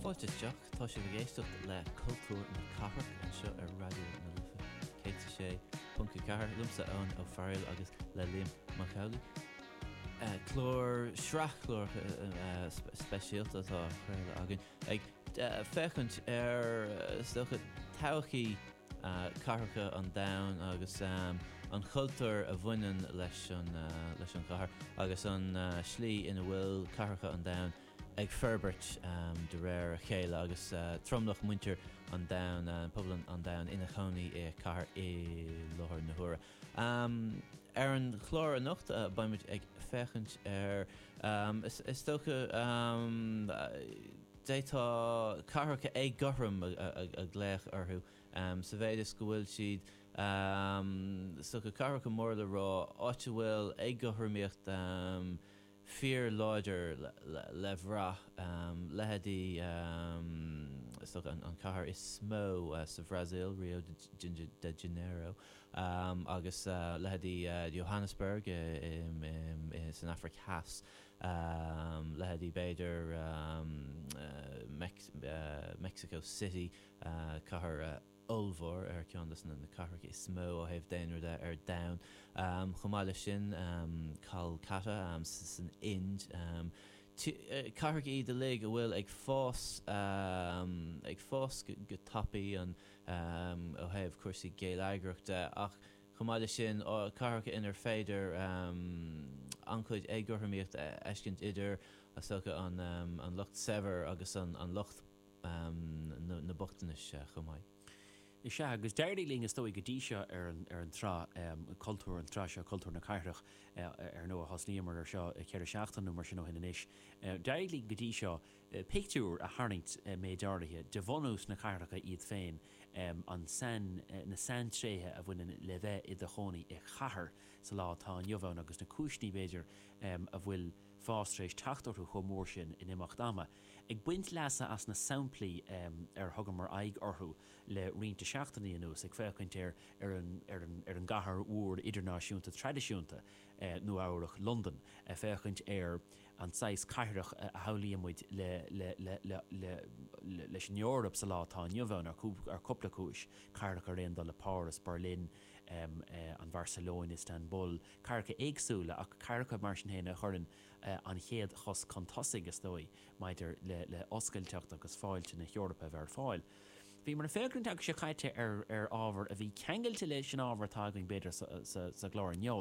Fáilte isteach, tá sibh ag éisteacht le Cultúr na Cathrach anseo ar Raidió na Life 106.4, liomsa Eoin Ó Fearghail agus le Liam Mac Amhlaigh. Clár, sraith cláracha speisialta atá á chraoladh againn ag féachaint ar, is dócha, todhchaí. cathracha an domhain agus an cultúr a bhaineann leis an gcathair agus an slí ina bhfuil cathracha an domhain ag forbairt de réir a chéile agus tromlach muintir an domhain, pobal an domhain, ina chónaí i cathair i láthair na huaire. Ar an chlár anocht beimid ag féachaint ar, is dócha. D'fhéadfá cathracha éagothrom a ghlaoch orthu sa mhéid is go bhfuil siad, is dócha, cathracha móra le rá, áit a bhfuil éagothromaíocht fíorláidir le bhraith, leithéidí, is dócha, an chathair is mó sa Bhrasaíl, Rio de Janeiro, agus leithéidí Johannesburg san Afraic Theas. um, leithéidí b'fhéidir, um, Mexico City, uh, cathair ollmhór ar cheann dos na cathracha is mó ó thaobh daonra de ar domhan. Um, chomh maith leis sin, um, Calcutta, um, san Ind, um, ti, uh, cathracha iad uilig a bhfuil ag fás, um, ag fás go, go tapaidh an, um, ó thaobh cúrsaí geilleagrachta de ach, Chomh maith leis sin, cathracha inar féidir an-chuid éagothromaíocht a fheiscint idir, is dócha, an lucht saibhir agus an lucht na bochtanais chomh maith. Is ea, agus d'éirigh linn, is dóigh, go dtí seo ar an tsraith Cultúr, an tsraith seo Cultúr na Cathrach, ar ndóigh, thosnaíomar ar seo ceithre seachtaine nó mar sin ó shin anois, d'éirigh linn go dtí seo, pictiúr a tharraingt méid áirithe de bhunús na cathracha iad féin an na saintréithe a bhaineann le bheith i do chónaí i chathair sa lá atá inniu ann agus na cúiseanna, b'fhéidir, a bhfuil fás tar éis teacht orthu chomh mór sin in imeacht ama. Ag baint leasa as na samplaí ar thugamar aghaidh orthu le roinnt seachtainí anuas, ag féachaint ar ar an gcathair mhór idirnáisiúnta traidisiúnta, Nua Eabhrac, Londain, ag féachaint ar. an saghas cathrach a shamhlaíonn muid leis an Eoraip sa lá atá inniu ann, ar chúpla cúis, cathracha ar aon dul le Páras, Beirlín, an Barcelona, Istanbul, cathracha éagsúla, ach cathracha, mar sin féin, a chuireann an chéad chos chun tosaigh, is dóigh, maidir le hoscailteacht agus fáilte na hEorpa a bheith ar fáil. Bhíomar ag féachaint an tseachtain seo caite ar ábhar a bhí ceangailte leis an ábhar atá againn b'fhéidir sa gclár inniu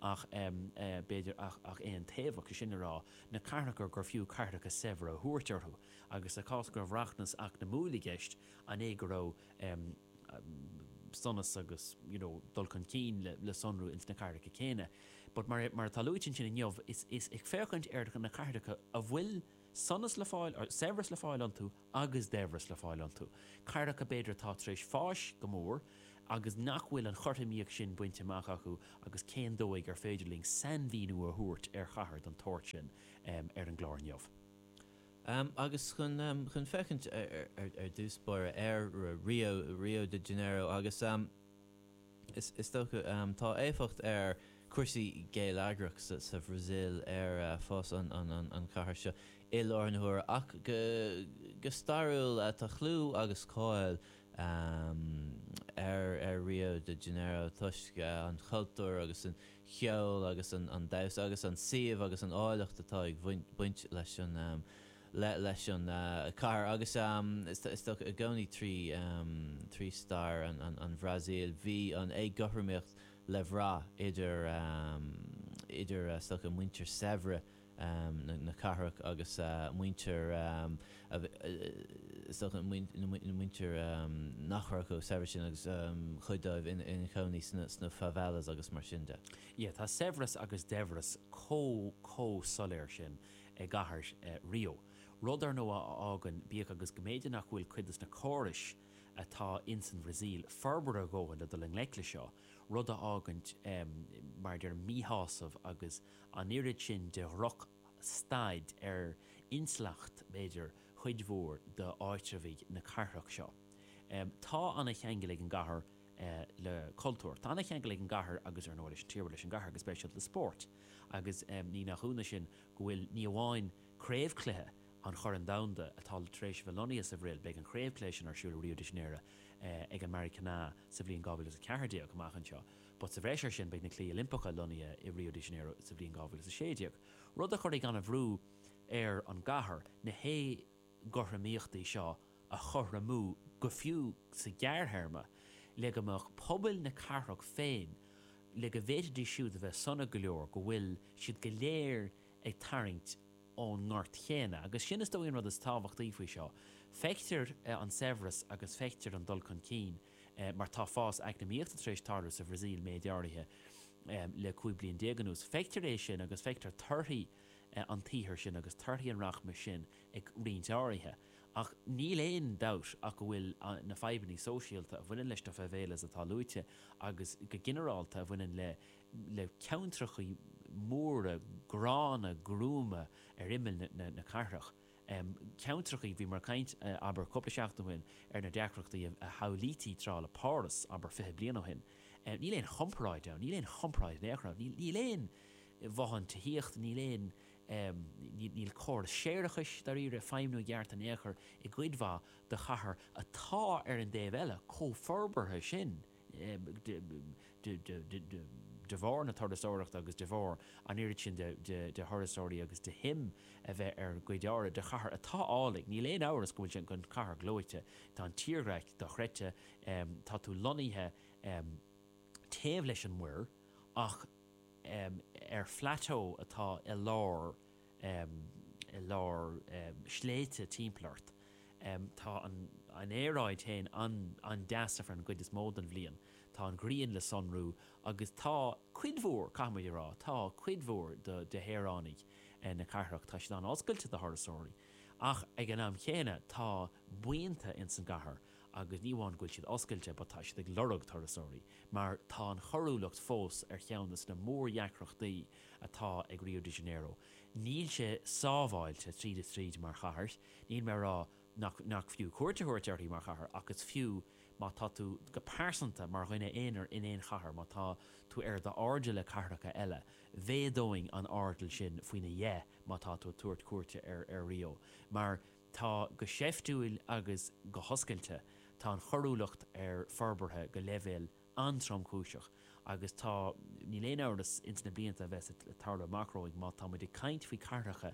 ach b'fhéidir ach aontaobhach, 'sé sin le rá, na cathracha gur fiú cathracha saibhre a thabhairt orthu agus sa chás go raibh rachmas eacnamúil i gceist an é go raibh sonas agus you know dul chun cinn le sonrú ins na cathracha céanna but mar mar atá luaite ansin inniu is is ag féachaint ar na cathracha a bhfuil sonas le fáil saibhreas le fáil iontu agus daibhreas le fáil iontu, cathracha b'fhéidir atá tar éis fáis go mór agus nach bhfuil an chothromaíocht sin bainte amach acu agus cén dóigh ar féidir linn sainmhíniú a thabhairt ar chathair den tsórt sin ar an gclár inniu? Agus chun féachaint ar dtús báire ar Rio de Janeiro agus. Is dócha. Tá éifeacht ar cúrsaí geilleagrach sa Bhrasaíl ar fhás an chathair seo i láthair na huaire, ach go stairiúil tá clú agus cáil ar Rio de Janeiro toisc an chultúr agus an cheol agus an damhsa agus an suíomh agus an áilleacht atá ag baint leis an leith leis an chathair agus is dócha i gcónaí trí stair an Bhrasaíl bhí an éagothromaíocht le brath idir is dócha muintir saibhre na cathrach agus muintir is dócha na muintir nach raibh chomh saibhir sin agus cuid díobh ina chónaí sna favelas agus mar sin de. Tá saibhreas agus daibhreas comh soiléir sin i gcathair Rio, rud, ar ndóigh, a fhágann, bíodh agus go mb'fhéidir nach bhfuil cuid de na córais atá ins an Bhrasaíl forbartha a dhóthain le dul i ngleic leis seo, rud a fhágann, mar a deirim, míshásamh agus an oiread sin de dhrochstaid ar intleacht, b'fhéidir, chuid mhór d'áitreabhaigh na cathrach seo. Tá ana-cheangal ag an gcathair le cultúr. Tá an-cheangal ag an gcathair agus, ar ndóigh, leis an tír, bhuel, leis an gcathair go speisialta, le spórt agus ní nach ionadh sin go bhfuil ní amháin craobhchluiche an Choirn Dhomhanda atá tar éis a bheith lonnaithe sa Bhrasaíl, beidh an craobhchluiche sin ar siúl i Rio de Janeiro ag an Maracana sa bhliain 2014, amach anseo, but sa bhreis air sin beidh na Cluichí Oilimpeacha lonnaithe i Rio de Janeiro sa bhliain 2016, rud a chuirfidh an-bhrú ar an gcathair, na. gcothromaíochtaí seo a chothromú go fiú sa ghearrthéarma le go mbeadh pobail na cathrach féin, le go bhféadfaidís siúd a bheith sona go leor go bhfuil siad go léir ag tarraingt ón ngort céanna. Agus sin is dóigh an rud is tábhachtaí faoi seo. Feictear an saibhreas agus feictear an dul chun cinn mar tá fás eacnamaíochta tar éis tarlú sa Bhrasaíl, méid áirithe, le 15 bliain anuas. Feictear é sin agus feictear torthaí. an tsaothair sin agus torthaí an rachmais sin ag roinnt áirithe, ach níl aon dabht ach go bhfuil na fadhbanna sóisialta a bhaineann leis, tá favelas atá luaite agus go ginearálta a bhaineann le ceantracha móra gránna gruama ar imeall na cathrach, i gceantrachaí. Bhí mé ag caint, abair, cúpla seachtain ó shin ar na deacrachtaí a shamhlaítí tráth le Páras, abair, fiche bliain ó shin. Níl aon chomparáid ann, níl aon chomparáid in aon chor ann. Níl aon bhothán tithíochta, níl aon, níl córas séarachais, dáiríre, ag feidhmniú i gceart in aon chor i gcuid mhaith de chathair atá, ar an dtaobh eile, chomh forbartha sin. de bharr na turasóireachta agus de bharr an oiread sin de thurasóirí agus de shuim a bheith ar an gcuid eile de chathair atá álainn. Níl aon amhras go bhfuil sé ina chathair ghleoite. Tá an tírdhreach dochreidte. Tá tú lonnaithe taobh leis an muir ach ar phlateau atá i lár. i lár sléibhte timpeall ort. Tá an aeráid féin an-deas ar an gcuid is mó den bhliain, tá an ghrian le sonrú agus tá cuid mhór, caithfimid a rá, tá cuid mhór de shaoránaigh na cathrach, tá siad an-oscailte do thurasóirí. Ach ag an am céanna, tá buíonta ins an gcathair agus ní amháin go bhfuil siad oscailte but tá siad ag lorg turasóirí mar tá an choiriúlacht fós ar cheann des na mór-dheacrachtaí atá ag Rio de Janeiro. Níl sé sábháilte tríd is tríd mar chathair. Níl mé ag rá nach fiú cuairt a thabhairt uirthi mar chathair, ach is fiú má tá tú, go pearsanta, mar dhuine aonair in aon chathair, má tá tú ar d'airdeall le cathracha eile, mhéadóinn an airdeall sin faoina dheich má tá tú ag tabhairt cuairte ar Rio. Mar tá, go seiftiúil agus go hoscailte, tá an choiriúlacht forbartha go leibhéal an-tromchúiseach agus tá, níl aon amhras, ins na blianta a bheas ag tarlú amach romhainn, má tá muid ag caint faoi cathracha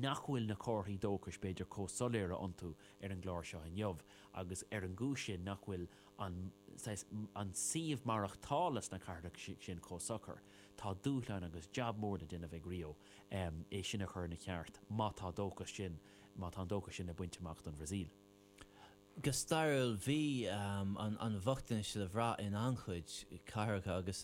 nach bhfuil na comharthaí dóchais b'fhéidir comh soiléire iontu ar an gclár seo inniu, agus ar an gcúis sin nach bhfuil an, saghas, an suíomh maireachtála sna cathracha sin comh socair, tá dúshlán agus jab mór le déanamh ag Rio é sin a chur ina cheart, má tá dóchas sin, má tá an dóchas sin le baint amach don Bhrasaíl. Go stairiúil, bhí an bochtanas le bhraith in an-chuid cathracha agus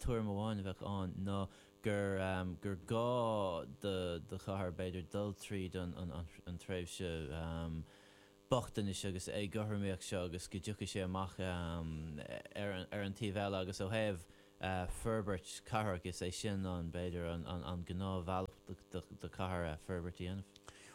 tuairim amháin a bheadh ann ná gur gá do chathair, b'fhéidir, dul tríd an tréimhse bochtanais agus éagothromaíocht seo agus go dtiocfadh sé amach ar an taobh eile agus ó thaobh forbairt cathrach, agus é sin an, b'fhéidir, an gnáthbhealach do chathair forbairt a dhéanamh.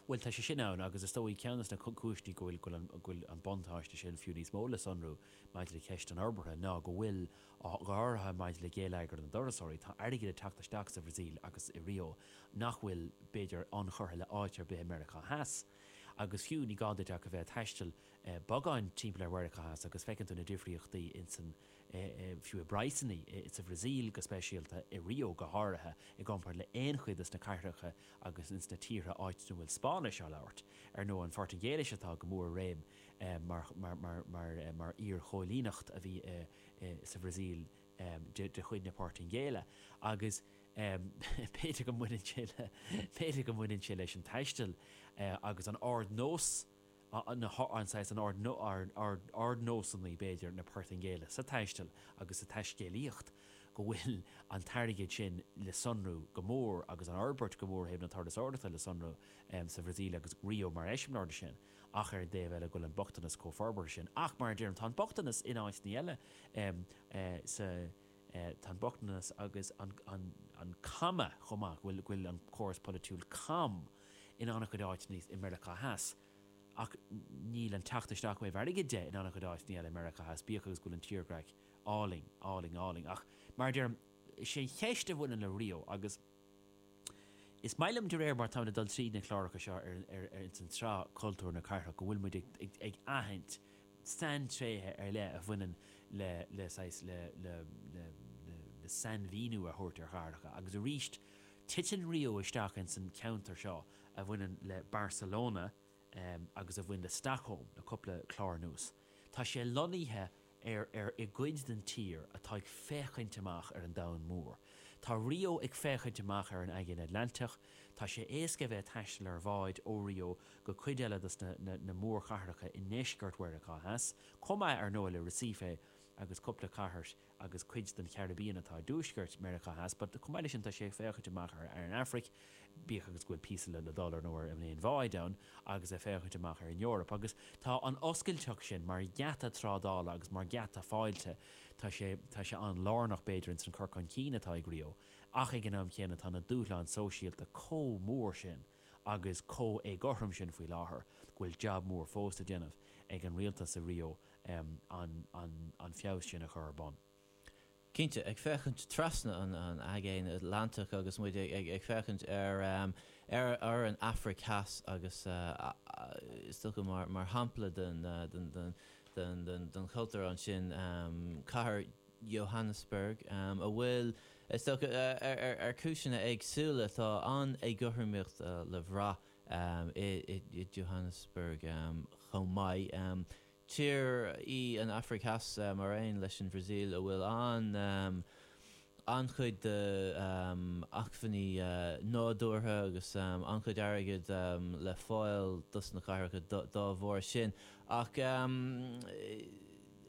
Bhuel, tá sé sin ann, agus is dóigh, ceann de na cúiseanna go bhfuil an buntáiste sin fiú níos mó le sonrú maidir le ceist an fhorbartha, ná go bhfuil, go háirithe maidir le geilleagar na dturasóirí, tá airgead ag teacht isteach sa Bhrasaíl agus i Rio nach bhfuil, b'fhéidir, ionchurtha le háit ar bith i Meiriceá Theas. Agus fiú, ní gá duit ach a bheith ag taisteal beagán timpeall ar Mheiriceá Theas agus feiceann tú na difríochtaí ins an fiú i bpraghsanna, sa Bhrasaíl go speisialta, i Rio go háirithe, i gcomparáid le haon chuid de na cathracha agus ins na tíortha áiteanna a bhfuil Spáinnis á labhairt, ar ndóigh, an Phortaingéilis atá go mór i réim mar iarchoilíneacht a bhí sa Bhrasaíl de chuid na Portaingéile, agus b'fhéidir go mbaineann sé leis an taisteal agus an ard-nós. ardnósanna, b'fhéidir, na Portaingéile sa taisteal agus sa taiscéalaíocht, go bhfuil an t-airgead sin le sonrú go mór agus an fhorbairt go mór ó thaobh na turasóireachta le sonrú sa Bhrasaíl agus Rio mar eiseamláir de sin. Ach ar an dtaobh eile, go bhfuil an bochtanas chomh forbartha sin. Ach, mar a deirim, tá an bochtanas in áiteanna eile sa. Tá an bochtanas agus an caime chomh maith go bhfuil an córas polaitiúil cam in an-chuid áiteanna i Meiriceá Theas. Ach níl an teacht isteach ó thaobh airgid de in an-chuid áiteanna eile i Meiriceá Theas, bíodh agus go bhfuil an tírdhreach álainn, álainn, álainn. Ach, mar a deirim, is é an cheist a bhaineann le Rio agus. Is maith liom, de réir mar táimid ag dul tríd na cláracha seo ins an tsraith Cultúr na Cathrach, go bhfuil muid ag aithint saintréithe ar leith a bhaineann le, le saghas, le, le, le, le, le sainmhíniú a thabhairt ar chathracha. Agus arís, titeann Rio isteach ins an cheantar seo a bhaineann le Barcelona agus a bhaineann le Stockholm le cúpla clár anuas. Tá sé lonnaithe i. ar, ar, i gcuid den tír atá ag féachaint amach ar an domhan mór. Tá Rio ag féachaint amach ar an Aigéan Atlantach. Tá sé éasca a bheith ag taisteal ar bhád ó Rio go cuid eile de na mórchathracha i ndeisceart Mheiriceá Theas, chomh maith, ar ndóigh, le Recife agus cúpla cathair agus cuid den Charibbean atá i dtuaisceart Meiriceá Theas. Chomh maith leis sin, tá sé ag féachaint amach ar an Afraic. bíodh agus go bhfuil píosa le dul ar ndóigh i mbád ann agus ag féachaint amach ar an Eoraip. Agus tá an oscailteacht sin mar gheata trádála agus mar gheata fáilte, tá sé, tá sé an-lárnach b'fhéidir ins an cur chun cinn atá ag Rio, ach ag an am céanna tá na dúshláin sóisialta chomh mór sin agus chomh héagothrom sin faoi láthair go bhfuil jab mór fós le déanamh ag an rialtas i Rio an feabhas sin a chur ar bun. Cinnte, ag féachaint trasna an Aigéin Atlantaigh agus muid ag féachaint ar an Afraic Theas agus is dócha mar shampla den chultúr ansin cathair Johannesburg a bhfuil, is dócha ar chúiseanna éagsúla, tá an-éagothromaíocht le bhraith i Johannesburg chomh maith. Tír í an Afraic Theas, mar aon leis an Bhrasaíl, a bhfuil an-chuid de acmhainní nádúrtha agus an-chuid airgid le fáil dos na cathracha dá bharr sin. Ach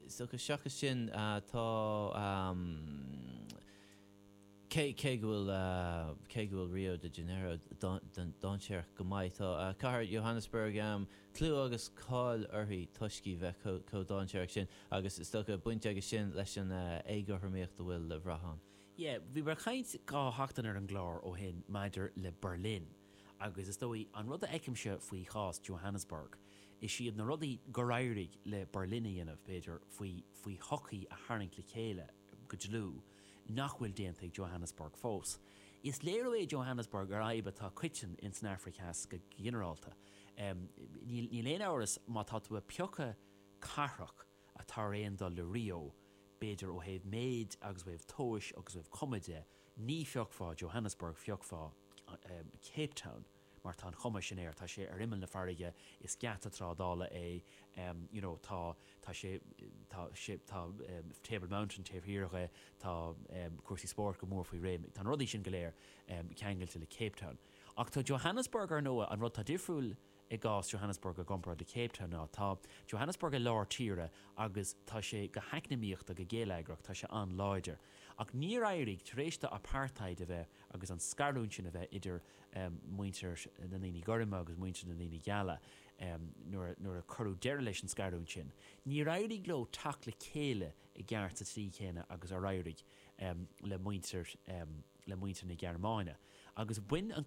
seachas sin, tá. Cé go bhfuil cé go bhfuil Rio de Janeiro dainséarach go maith, tá cathair Johannesburg em clú agus cáil uirthi toisc í bheith chomh dainséarach sin, agus is dócha baint aige sin leis an éagothromaíocht a bhfuil le brath ann. Yea, bhí mé ag caint dhá sheachtain ar an gclár ó shin maidir le Berlin, agus is dóigh, an rud a fheicimse faoi chás Johannesburg, is iad na rudaí gur éirigh le Berlin a dhéanamh, b'fhéidir, faoi faoi shochaí a tharraingt le chéile go dlúth, nach bhfuil déanta ag Johannesburg fós. Is léiriú é Johannesburg ar fhadhb atá coiteann ins an Afraic Theas go ginearálta. Níl aon amhras má tá tú ag piocadh cathrach atá ar aon dul le Rio, b'fhéidir ó thaobh méid agus ó thaobh tomhais agus ó thaobh cuma de, ní phiocfá Johannesburg, phiocfá Cape Town. mar tá an chuma sin air, tá sé ar imeall na farraige, is geata trádála é, you know, tá, tá sé, tá sé, tá Table Mountain taobh thiar de, tá cúrsaí spóirt go mór faoi réim, tá na rudaí sin go léir ceangailte le Cape Town. Ach tá Johannesburg, ar ndóigh, an rud atá difriúil i gcás Johannesburg i gcomparáid le Cape Town ná, tá Johannesburg i lár tíre agus tá sé, go heacnamaíochta, go geilleagrach, tá sé an-láidir. Ach níor éirigh, tar éis do apartheid a bheith agus an scarúint sin a bheith idir, muintir na ndaoine gorma agus muintir na ndaoine geala, nuair a cuireadh deireadh leis an scarúint sin, níor éirigh leo teacht le chéile i gceart sa tslí chéanna agus ar éirigh le muintir le muintir na Gearmáine. Agus bhain an.